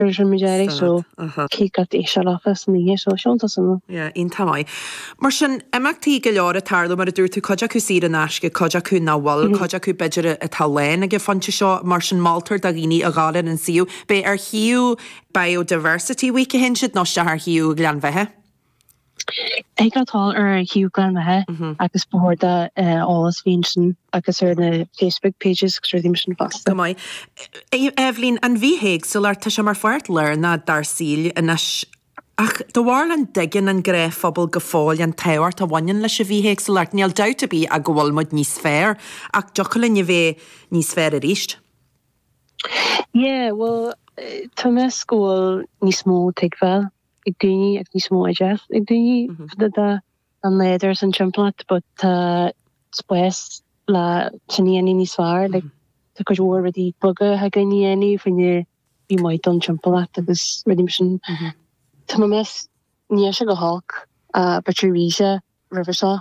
Virgin Metallic so cé got é seo leofa san oíche seo seolta san. Yeah, iontach maith. Mar sin, imeachtaí go leor a tarlú, mar a dúirt tú, cuid acu saor in aisce, cuid acu nach bhfuil, cuid acu b'fhéidir atá lán ag an phointe seo, mar sin moltar do dhaoine a ghabháil ar an suíomh, an ar shuíomh Biodiversity Week a théann siad, nó isteach ar shuíomh Ghleann Bheatha. Tá, tá ar shuíomh Ghleann Bheatha agus ba chóir don eolas bheith ansin agus ar na Facebook pages agus rudaí mar sin fosta. Go maith. Eibhlín, an bhithéagsúlacht tá sé mar pháirt lárnach dár saoil anois ach do bharúil an dtuigeann an gnáthphobal go fóill an tábhacht a bhaineann leis an bhithéagsúlacht níl dabht ar bith ach go bhfuil muid níos fearr ach dtiocfadh linn a bheith níos fearr arís. Yeah, bhuel tá mé ag meas go bhfuil níos mó tuigbheáil. ag daoine agus níos mó airde ag daoine fá dtaobh den nádúr 's an timpeallacht but tá spás le sin a dhéanamh níos fearr like tá cuid mhór rudaí beaga a thig linn a dhéanamh fá choinne bheith maith don timpeallacht agus rudaí mar sin tá mé ag meas níl sé chomh holc b'fhéidir is a bhí sé roimhe seo.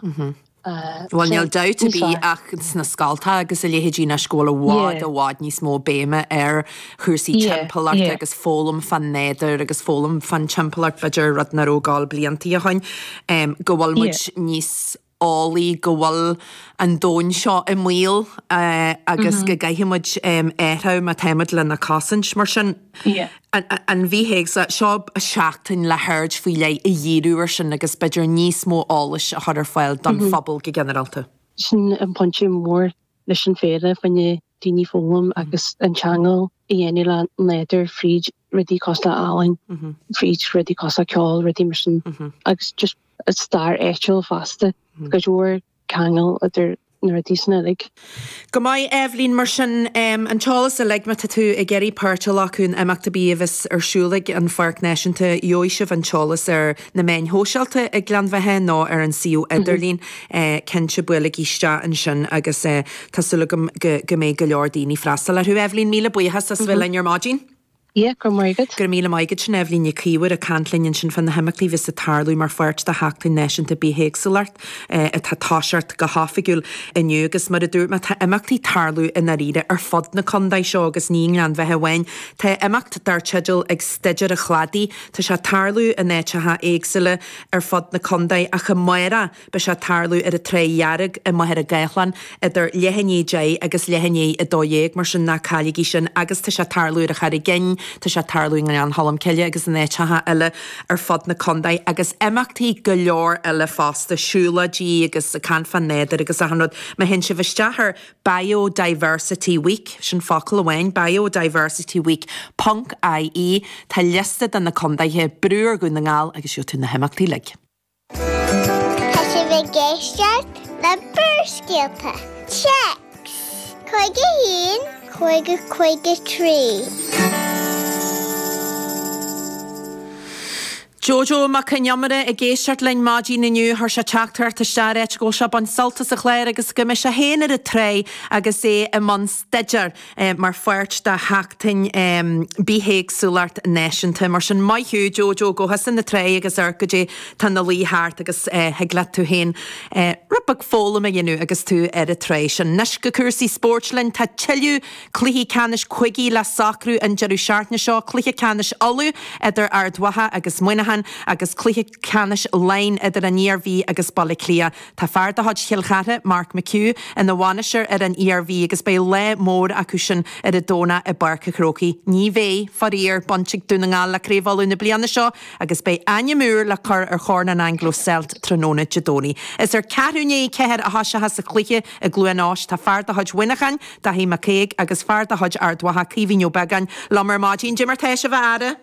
Bhuel níl dabht ar bith ach sna scoltacha agus a leithéidí anois go bhfuil i bhfad, i bhfad níos mó béime ar chúrsaí timpeallachta agus foghlaim fán nádúr agus foghlaim fán timpeallacht b'fhéidir, rud nach rabh ar fáil blianta ó shoin, go bhfuil muid níos eolaí, go bhfuil an domhain seo i mbaol agus go gcaithfidh muid athrú má tá muid lena cosaint mar sin. Fia. an bhithéagsúlacht. Seo seachtain le haird faoi leith a dhíriú air sin agus b'fhéidir níos mó eolais a chur ar fáil don phobal go ginearálta. Sin an pointe mór leis an fhéile, fá choinne daoine foghlaim agus an ceangal a dhéanamh le nádúr fríd rudaí cosúil le healaín, fríd rudaí cosúil le ceol, rudaí mar sin agus just stair áitiúil fosta. Go leor ceangal idir na rudaí sin uilig. Go maith, Eibhlín, mar sin an t-eolas uilig, má tá tú ag iarraidh páirt a ghlacadh in imeacht ar bith a bheas ar siúl ag an Pháirc Náisiúnta gheobhaidh sibh an t-eolas ar na meáin shóisialta ag Gleann Bheatha nó ar an suíomh idirlín. Cinnte, buailigí isteach ansin agus tá súil agam go mbeidh go leor daoine ag freastal orthu. Eibhlín, míle buíochas as bheith linn ar maidin. Yeah, go raibh maith agat. Go raibh míle maith agat, sin Eibhlín Nic Íomhair ag caint linn ansin fá na himeachtaí a bheas ag tarlú mar pháirt de Sheachtain Náisiúnta Bithéagsúlacht atá ag toiseacht go hoifigiúil inniu agus mar a dúirt mé tá imeachtaí ag tarlú i ndáiríre ar fud na condae seo agus ní i nGleann Bheatha amháin. Tá imeacht dar teideal Ag Staidéar a Chladaí, tá sé ag tarlú in áiteacha éagsúla ar fud na condae ach amárach. Beidh sé ag tarlú ar an Trá Dhearg i Machaire Gathlán idir leath i ndiaidh deich agus leath i ndiaidh a dó dhéag, mar sin ná caillígí sin agus tá sé ag tarlú ar an Charraig Fhinn, tá sé ag tarlú i nGleann Cholm Cille agus in áiteacha eile ar fud na condae agus imeachtaí go leor eile fosta, siúlóidí agus caint fán nádúr agus achan rud. Má théann sibh isteach ar Biodiversity Week, sin focal amháin, biodiversityweek ponc IE, tá liosta de na condaethe, brú ar Dhún na nGall agus gheobhaidh tú na himeachtaí uilig. Tá sibh ag éisteacht le Barrscéalta, Téacs, 51553. Jojo Mac Con Iomaire ag éisteacht linn ar maidin inniu chuir sé teachtaireacht isteach ag ráit go bhfuil sé ag baint sult as an chlár agus go mbeidh sé féin ar an trá agus é i mbun staidéar. mar pháirt de Sheachtain Bithéagsúlacht Náisiúnta. Mar sin, maith thú Jojo, gabh thusa chun na trá agus amharc goidé atá ina luí thart agus thig leat tú féin rud beag foghlaim a dhéanamh agus tú ar an trá sin. Anois go cúrsaí spóirt linn. Tá tuilleadh cluichí ceannais cúige le socrú an deireadh seachtaine seo, cluiche ceannais Uladh idir Ard Mhacha agus Muineachán agus cluiche. ceannais Laighean idir an Iarmhí agus Baile Átha Cliath. Tá fear de chuid Chill Chartha, Mark McHugh, ina bhainisteoir ar an Iarmhí agus beidh lá mór acu sin ar an Domhnach i bPáirc an Chrócaigh. Ní bheidh, faraor, baint ag Dún na nGall le Craobh Uladh na bliana seo agus beidh ainm úr le cur ar Chorn an Anglo Celt tráthnóna Dé Domhnaigh. Is ar ceathrú i ndiaidh a ceathair a thosóchas an cluiche i gCluain Eois. Tá fear de chuid Mhuineacháin, Daithí McCague, agus fear de chuid Ard Mhacha, Caoimhín Ó Beagáin, liom ar maidin. Goidé mar atá sibh a fheara.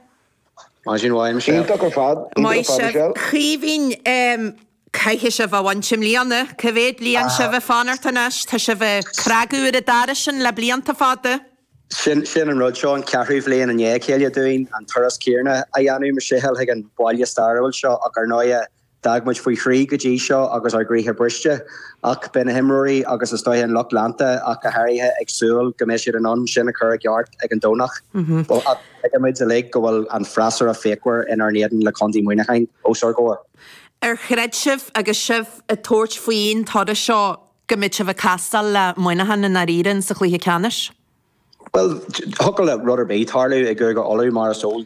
Maidin mhaith Michelle. Iontach ar fad. Iontach ar Maith fad sibh. Michelle. Caoimhín, caithfidh sibh a bhaint i mbliana. Cá mhéad bliain sibh ag fanacht anois? Tá sibh ag cnagadh ar an doras sin le blianta fada. Sin sin an rud, seo an ceathrú bhliain i ndiaidh a chéile dúinn an turas céarna a dhéanamh, Michelle, chuig an bhaile stairiúil seo ach ar ndóighe, D'fhág muid faoi thrí go dtí seo agus ár gcroíthe briste, ach beidh na himreoirí agus is dóigh an lucht leanta ach go háirithe ag súil go mbeidh siad in ann sin a chur i gceart ag an Domhnach. Tuigimid uilig go bhfuil an freasúra fíochmhar inár n-éadan le Contae Mhuineacháin os ár gcomhair. Ar chreid sibh agus sibh ag tabhairt faoin turas seo go mbeadh sibh ag castáil le Muineachán i ndáiríre sa chluiche ceannais? Bhuel, thiocfadh le rud ar bith tarlú i gCúige Uladh mar is eol dúinn.